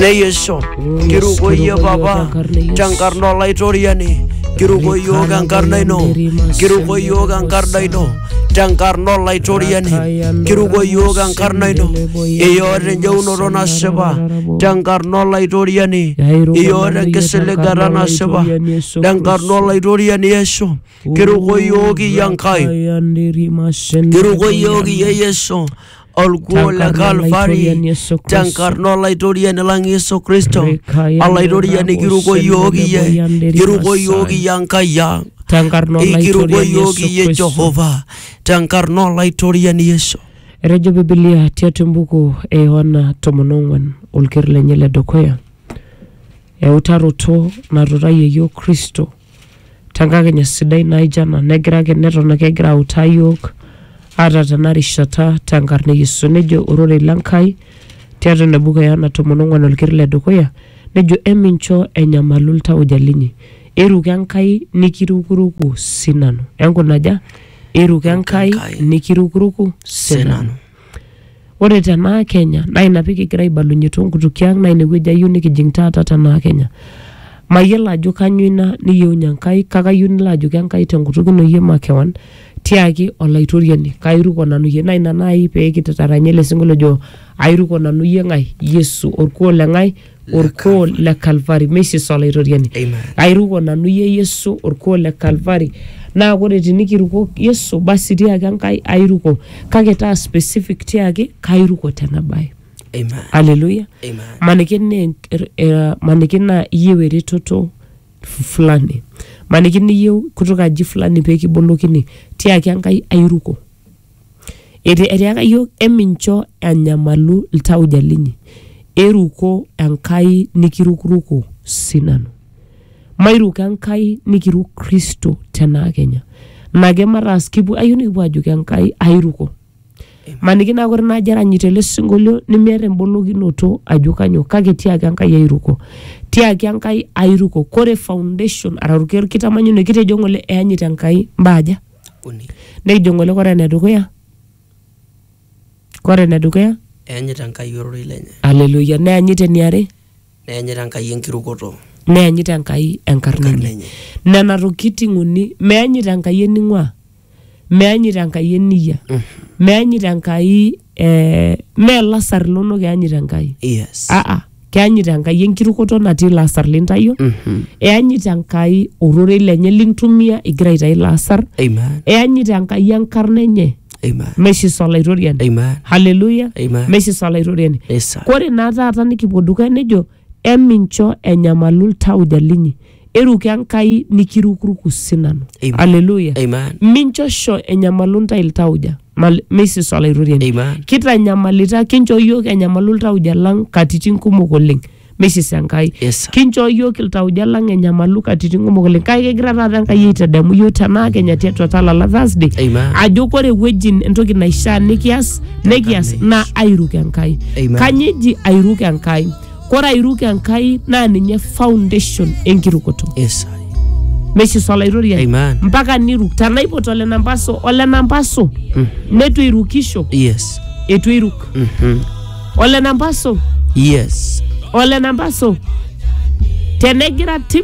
neyesho kiruko iyie papa tenkarna olaitoriani kiruko iyiook enkarna ino kiruko iyiook enkarna ino tenkarna olaitoriani kiruko iyiook enkarna ino iyoota enjeunoto nasipa tenkarna olaitoriani iyoota enkisiligata nasipa tenkarna olaitoriani yesu kiruko iyiook iyie enkai kiruko iyiook iyie yesu olkuo le kalvari tenkarna olaitoriani lang Yesu Kristo olaitoriani kiruko iyiook iyie kiruko iyiook iyie Enkai ang tenkarna ikiruko olaitoriani iyiook Yesu iyie Kristo. Jehova tenkarna olaitoriani Yesu Etejo Bibilia tiatua embuku e Yohana tomon ong'uan olker lenye le dukuya eutaroto natutayie iyiook Kristo tenkakenya sidai naijo ena negira ake neton ake egira autaa yiok ata tena rishata tenkarna e Yesu nejo ororei le Nkai tiatua ina buku e Yohana tomon ong'uan olkiri le dukuya nejo emincho enyamalu iltauja linyi iruko Enkai nikirukuruku sinanu enkunaja iruko Enkai Enkai nikirukuruku sinanu sinanu Ore tenaa Kenya naa ina pee kigira aibalunye too nkutukie ang naa ine wueji ayieu nikijing taata tenaa Kenya. Mayiolo ajo kainyioo ina niyieunye Enkai kake ayieu nilo ajoki Enkai te nkutuk ino iyie makewon tiaki Olaitoriani kairuko nanu iyie. Naa ina naaji pee kitaranya ele sinkolio ojo airuko nanu iyie ng'ae Yesu orkuoo le ng'ae. orkuo le Kalvari, mesis Olaitoriani. Amen. Airuko nanu iyie Yesu orkuo le Kalvari. Naa ore tinikiruko Yesu, basi tiaki Enkai airuko. Kake taa specific tiaki kairuko tena bae. Amen. Haleluya. Amen. Maniki naa enk- eh, maniki naa iyieu eretoto f- fulani. Maniki niyieu kutoka aji fulani pee kibolokini. Tiaki Enkai airuko. Eti- etiaka yiok emincho enyamalu iltauja linyi iruko enkai nikirukuruko sinanu mairuko enkai nikiruk kristo tenaa kenya nake mataas kipu ayieu nikipuo ajoki enkai airuko maniki naa kore naaji eranyito ele sinkolio nimiata embolokinoto ajo kanyoo kake tiaki enkai airuko tiaki enkai airuko kore foundation araki orkitamanyune kitejo ng'ole eyanyit enkai imbaa aja. uni Nekijo ng'ole kore enedukuya, kore enedukuya, eanyita Enkai ororei lenye aleluya, neanyita eniare, neanyita Enkai enkirukoto neanyita Enkai enkarna enye. enye Nena tokitin uni, meanyita Enkai ening'uaa, meanyita Enkai eniyia, meanyita Enkai eh, mee lasar linonok eanyita Enkai. yes Aa. keanyit enkai enkirukoto natii ilo asar lintayio eanyit enkai ororei lenye lintumia igira aitayu ilo asar Amen. eanyit enkai enkarna enye Amen. meshisa olaitoriani Amen. haleluya Amen. meshisa olaitoriani Yes, sir. kore naa taata nikipuo dukuya nejo emincho enyamalu ltauja linyi Eruk Enkai nikirukuruku sinanu. Amen. Haleluya. Amen. Minchosho enyamalu ntae iltauja, mal- meisiso olaitoriani. Amen. Kitanyamalita, kinchoo iyiook enyamalu iltauja lang katitin kumok oleng. Meisiso Enkai. Yes, sir. Kinchoo iyiook iltauja lang enyamalu katitin kumok oleng. Kake kegira taata Enkai aitadamu iyiook tenaa kenya tiatua talala Thursday. Amen. Ajo kore ewueji entoki naishaa nikias, nikias naa airuk Enkai. Amen. Kanyoo eji airuk Enkai? Kore airuk Enkai naa ninye foundation enkirukoto. Yes. Meishiso olaitoriani. Amen. Mpaka niruk. Tenaipot ole nampaso, ole nampaso neitu eirukisho, Yes. eitu eiruk. Mhm. Ole nampaso, Yes. ole nampaso. Tenegira tim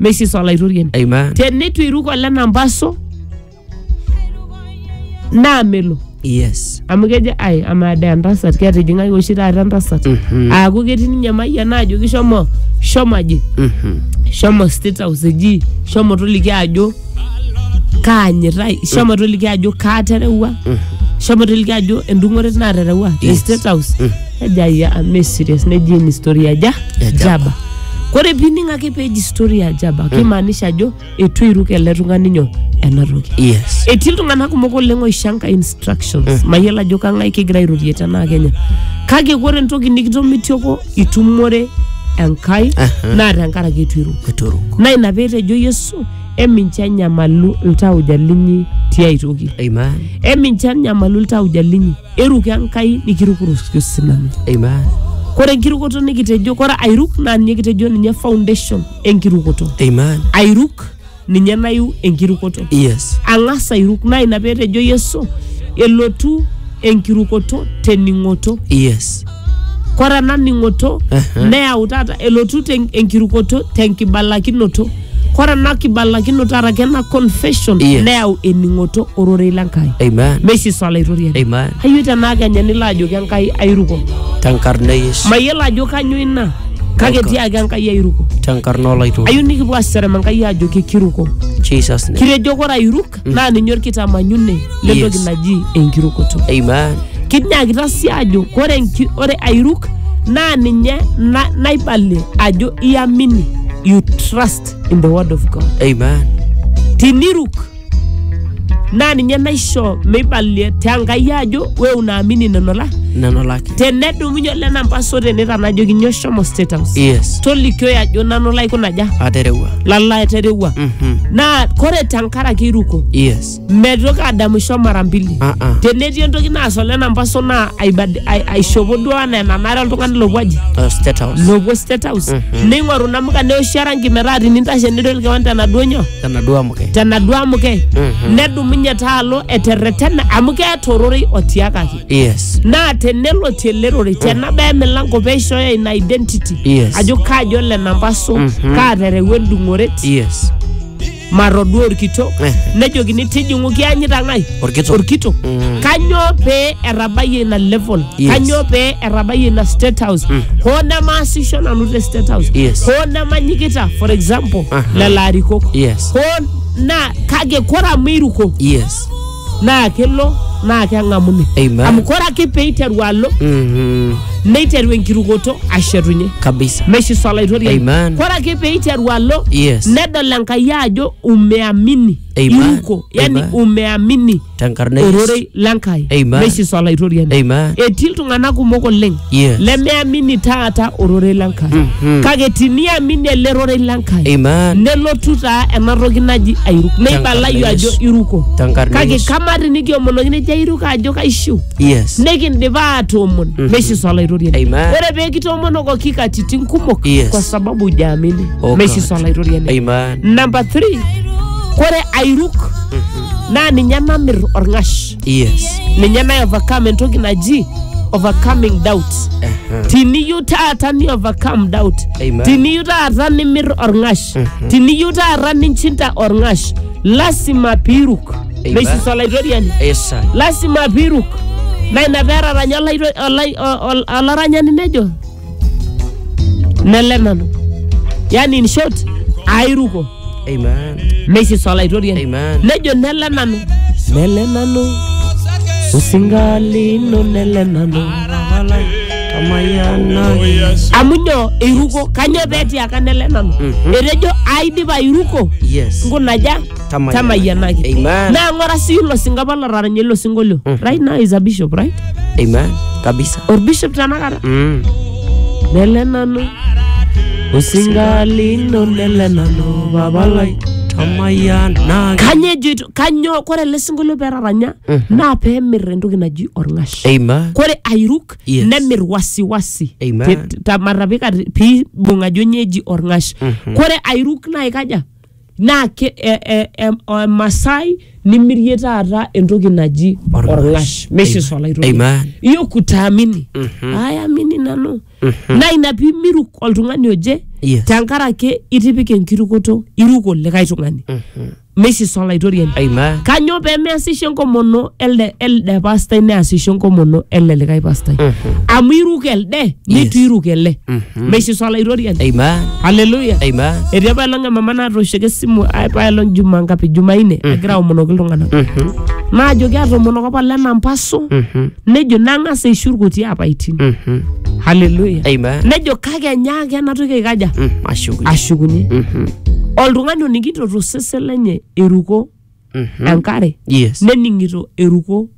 meisisa olaitoriani Amen. teneitu iruk ole nampaso naa melo Yes. amu kejo ai amaa dee entasat ketijing'aki oshi taata entasat Mhm. aaku ketii ninye mayian ajoki shomo shomo aji Mhm. shomo state house eji shomo toliki ajo kaanyitai shomo toliki ajo kaaterewua shomo toliki ajo endung'ore naaterewua te Yes. state house nejo ayia ame serious neji eni story aja Ejaba. jaba kore pining ake peji story ajaba kimaanisha ajo etu eiruk ele tung'ani nyoo ena toki yes etii iltung'anak kumok oleng oishanga instructions mayiolo ajo kang'ae kigira airorie tenaa kenya kake ore entoki nikitomitioko itumore enkai naa tenkaraki etu iruk eturu naa ina peetejo yesu emincho enyamalu iltauja linyi tiai toki amen emincho enyamalu iltauja linyi Eruko Enkai nikirukuroki osinanu. Amen. Kore enkirukoto nikitejo, kore airuk naa ninye kitejo ninye foundation enkirukoto. Amen. Airuk ninye nayu enkirukoto. Yes. Ang'as airuk naa ina peetejo Yesu elotu enkirukoto tening'oto. Yes. Kore ena ning'oto Aha. neyau taata elotu ten- enkirukoto tenkibalakinoto. Kore ena kibalakinoto araki ena confession Yes. neyau ening'oto ororei le Nkai. Amen. Meisisa olaitoriani. Amen. Ayio tenaa kenya nilo ajoki Enkai airuko. Tenkarna e Yesu. Mayiolo ajo kanyoo ina kake Okay. tiaki Enkai airuko. Tenkarna olaituri. Ayio nikipuo aserem Enkai ajoki kiruko. Jesus name. Kitejo kore airuk naa ninye olkitamanyune lentoki Yes. naji enkirukoto Amen. kinyakita sii ajo kore enki- ore airuk naa ninye na- naibalie ajo iamini you trust in the word of god Amen. tiniruk naa ninye naisho meibalie te Enkai ajo we unaamini neno la Neno lake. tenedumunye ole nampaso tene tanajoki nyoo shomo state house yes tolikioi ajo nanu laikunaja aterewua lalo aterewua Mhm. naa kore tenkaraki iruko yes metoki adamisho mara mbili Ah, ah. tenetii entoki naas ole nampaso naa aibad- ai- aishopo duo anaa enanare oltung'ani lopuo aji Uh, state house lopuo state house Mhm. neing'oru namuka neoshi orangi metaa tinintashe nidol kewan tenaduo nyoo tenaduo amuke tenaduo amuke Mhm. nedumunye taalo eterretena amu keeta ororei otiakaki Yes. naa tenelotie ele rorei tenabaya emilango peishooyo ina identity Yes. ajo kaaji ole namba so Mhm. kaaterewua endung'oret Yes. matodua orkitok Eh. nejokini tijing'u kianyita ng'ae Orkitok. orkitok Mm. kanyoo pee etabayie ina level Yes. kanyoo pee etabayie ina state house Mm. hoo nemaasisho nanu te state house Yes. hoo nemanyikita for example Aha. lelo arikok Yes. hoo naa kake kore amu iruko Yes. naa kelo naa keng'amuni Amen. amu kore ake peiteru alo Mhm. neiteru enkirukoto ashetunye kabisa meshiso olaitoriani Amen. kore ake peiteru alo Yes. nedol enkai ajo umeamini Amen. iruko yani Amen. umeamini tenkarna Yesu. ororei lenkai Amen. meshiso olaitoriani Amen. etii iltung'anak kumok oleng Yes. lemeamini taata ororei le Nkai Mhm. kake tiniamini ele rorei le Nkai Amen. nelotu taa ena toki naji airuk neibalayu Tenkarna ajo Yesu. iruko Tenkarna kake Yesu. kamaa tinikiomonoki nejo airuk ajo kaishiu Yes. nikindipa aatoomon meishiso olaitoriani Amen. ore pee kitoomonokoki katitin kumok Yes. kwa sababu hujaamini Oh, meishiso God. olaitoriani Amen. namba 3 kore airuk naa ninye namir orng'ash yes ninye naye overcome entoki naji overcoming doubt tiniyieu taata ni overcome doubt Amen. tiniyieu taata nimir orng'ash tiniyieu taata ninchinda orng'ash lasima piiruk Amen. neisisa olaitoriani esai lasima piiruk na ina peetaranya olaito- olai- o- ol- olaranyani nejo nele nanu yani in short airuko Amen. mesis olaitoriani Amen. nejo nele nanu nele nanu osingalino nele nanu amu nyo eiruko kanyoo petiaka nele nanu etejo aidipa airuko Yes. nkunaja Tamayiana. tamayianaki Amen. naa ng'ora sii ilo singo apa lotaranya ilo sinkolio right now is a bishop right Amen. Kabisa. orbishop tenakata Mm. nele nanu osinga lino nele nanu baba lai Tamayiana. kanyoo ejoito kanyoo kore ele sinkolio petaranya naa peemir entoki naji orng'ash Amen. kore airuk Yes. nemir wasiwasi Amen. Te- te- matapika te- piibung ajo nyeji orng'ash kore airuk naa ikaja naa ke- e- e- em- o- emasai nimirie taata entoki naji Orng'ash. orng'ash meshes Amen. olaitoki Amen. iyo kutaamini ayamini nanu naa ina piimiruk oltung'ani oje Yes. tenkaraki itipika enkirukoto iruko likae tung'ani meshes olaitoriani Amen. kanyoo pemeasisho enkomono elde elde pastai neasisho enkomono ele likae pastai amu iruko elde nitu iruko ele meishiso olaitoriani Amen. haleluya Amen. etii apa elong emama naatooshoki esimu ai- pa elong juma ngapi jumaine egira aomonoki iltung'anak Mhm. naajoki atoomonoko apa lena mpasu Mhm. nejo nang'as aishu irkuti apaitin Mhm. haleluya Amen. nejo kake enyaaki ena toki aikaja Mm, Ashukunye. ashukunye Mhm. oltung'ani oning'ito tosesen lenye eruko Mhm. enkare Yes. nening'ito eruko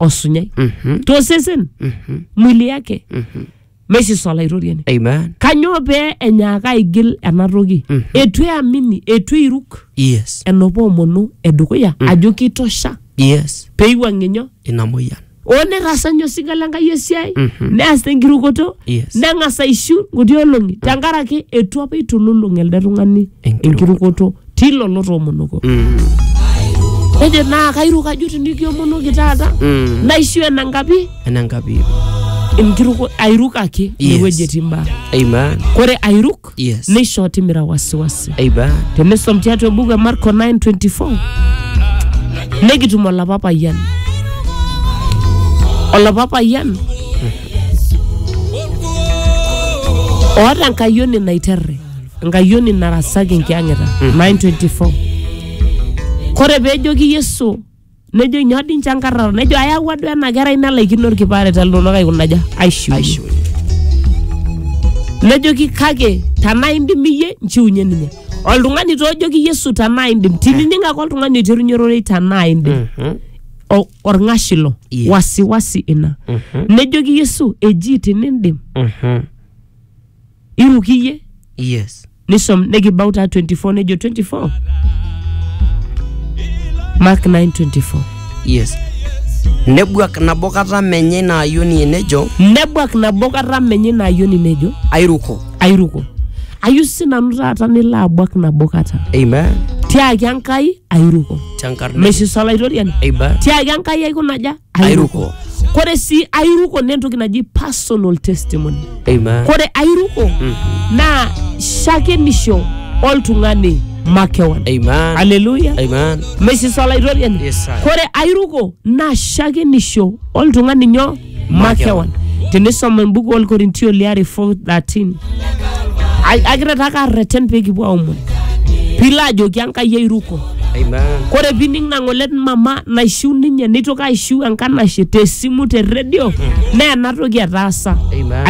osunyai Mhm. tosesen Mhm. mwili yake Mhm. meisisa olaitoriani Amen. kanyoo pee enyaaka aigil ena toki eitu eamini eitu eiruk Yes. enopa omonu edukuya ajo kitosha Yes. peiwuang'ie nyoo Ina moyian. oo netaasa ninye osinka le Nkai esiai neas tenkirukoto Yes. neng'as aishiu nkuti olong'i tenkaraki eitu apa eitululung elde tung'ani Enkirukoto. enkirukoto tilo lotoomonoko nejo naa kairuk ajo tinikiomonoki taata Mm. naishu enankapi enankapi enkiruko airuk ake Yes. inewueji etii mbaa amen kore airuk Yes. neishoo timira wasiwasi amen tenisom tiatua ebuku e marko 924 nekitum olapa payian olapa payian oota enkayioni naiterre enkayioni narasaki enkiyang'ita 924 kore peejoki yesu nejo nyoo dii nche enkarraro nejo ayawua duo ena kerai nelaikino orkipare telulung'ata aikunaja aishiu nejoki kake tanaa indim iyie nchiunye ninye oltung'ani toojoki yesu tanaa indim tinining ake oltung'ani oiterunye ororei tanaa indim o- orng'ash ilo Yes. wasiwasi ina nejoki yesu eji tinindim iruk iyie yes nisom nekibau taa 24 nejo 24 mark 924 yes nebuak nabo kata menye ina ayioni enejo nebuak nabo kata menye ina ayioni nejo airuko airuko ayu sinanu taata nilo abuak nabo kata amen tiaki enkai airuko tenkarna meisisa olaitoriani amen tiaki enkai aiko naja airuko kore sii airuko naa entoki naji personal testimony amen kore airuko naa shakenisho oltung'ani makewan amen aleluya amen mesisa olaitoriani Yes, sir. kore airuko naa shakenisho oltung'ani nyo makewan tinisoma embuku olkorintio liare 413 Ai- akira taa karreten pekipuo aomon pilo ajoki enkai airuko Amen. kore pining nang'olet mama naishiu ninye neitoki aishiu enkanashe tesimu te redio naa enatoki etaasa Amen.